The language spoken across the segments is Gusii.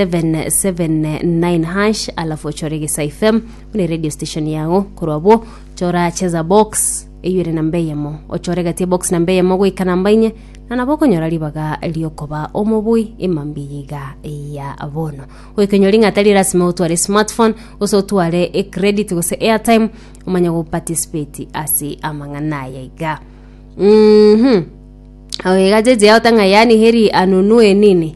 779 alafu ochore gesa fm buna radio station yago korwa bo chora cheza box eyo ere namba eyemo ochore gatie box namba eyemo goika namba inye na nabo okonyora ribaga riokoba omobui emambi yiga ya bono goikenyori ng'a atari lasima otware smartphone gose otware ecredit gose airtime omanye goparticipate ase amang'ana aya iga mm -hmm. Oiga jeje yao tang'a yani heri anunue nini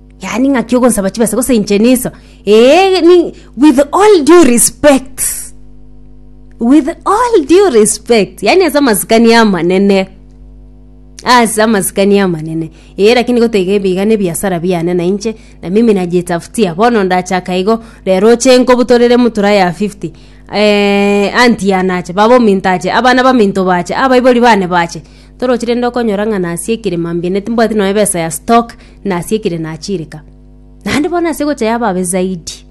yaani ng'aki ogonsaba chibesa gose inche niso ee ni with all due respect with all due respect yaani ase amasikani amanene ase amasikani amanene ee lakini goteba ebi iga nebiasara biane na inche na mimi najitafutia bono ndachaka igo rero oche nkobutorere emutura ya 50 eh, auntie yane ache baba ominto ache abana baminto bache abaibori bane bache. Toroche rende okonyora ng'a nasie ekere mambia ne timbwati nonya ebesa ya stock nasie ekere nachireka naende bono nasie gocha yababe zaidi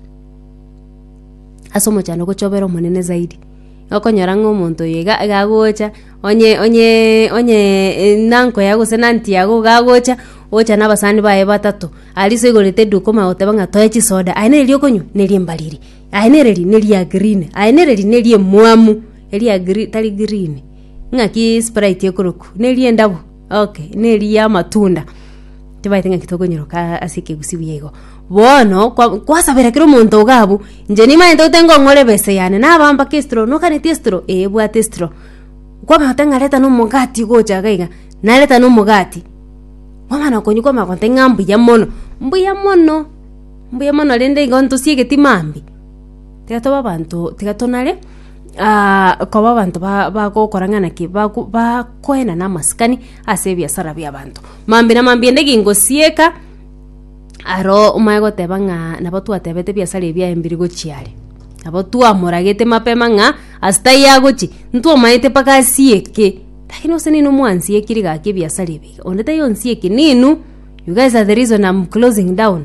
ase omochando gochobera omonene zaidi okonyora ng'a omonto oyo iga iga agocha onye onyeeee onyeeee na uncle yago gose na aunty yago iga agocha ocha na abasani baye batato aria iso igorete eduka omanyogoteba ng'a toe chisoda aye nere riokonywa neri embariri aye nere ri neri ya green aye nere ri neri emwamu eria ya gre tari green. Ng'aki sprite ekoroku neri endabu okay neri yamatunda tibaete ng'aki tokonyeroka ase ekegusi buya igo bono kwa kwasabera kera omonto iga abwo inche nimanyete gose ngong'ora ebesa yane naba mpaka estro nokaneti estro eh ebwate estro kwamanya goteba ng'a reta na omogati gocha iga iga nareta na omogati kwamana okonywa kwamana goteba ng'a mbuya mono mbuya mono mbuya mono rende igo ntosie egetima mambia tiga tobe abanto tiga tonare. koba abanto ba- bagokora ng'a naki bago bakoenana amasikani ase ebiasara biabanto. Mambia na mambia ende gingosieka, aro omae goteba ng'a nabo twatebete ebiasara ebi aye mbiri gochia are, nabo twamoragete mapema ng'a ase taiyo agochi, ntwamaete mpaka asieke, lakini gose neinwe mwansiekiri gaki ebiasara ebi iga, onde taiyo onsieki neinwe, you guys are the reason am closing down,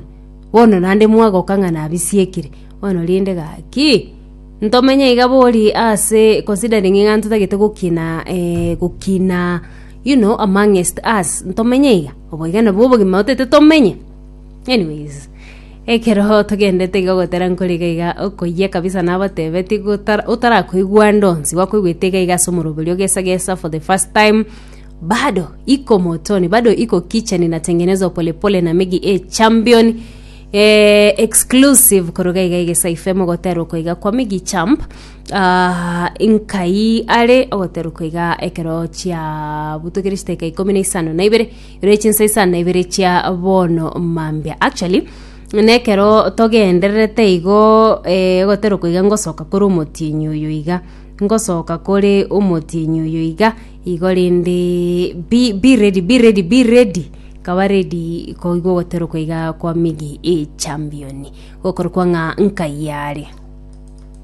bono naende mwagoka ng'a nabisiekire, bono rende gaki. Ntomenye iga bori ase considering ng'a ntotagete gokina eh, gokina you know amongst us ntomenye iga obo iga nabwo obogima otete tomenye anyways ekero togendete iga gotera nkore iga iga okoyia kabisa nabatebeti gotara otarakoigwa ndonsi gwakoigwete iga iga ase omoroberi ogesa gesa for the first time bado iko motoni bado iko kicheni natengenezwa pole pole na megi a champion Eh, exclusive koruga iga igesa ife mogoterwa koiga kwa migi champ ah, nkai are ogoterwa koiga ekero chia butokire chiteka ikomi na isano na ibere ere chinsa isano na ibere chia bono mambia actually nekero togendererete igo eh, ogoterwa koiga ngosoka kore omotienyi oyo iga ngosoka kore omotienyi oyo iga Igo rende be, be ready, be ready, be ready nkaba ready koigwa ogoterokwa iga kwa migi echampioni gokorokwa ng'a nkai are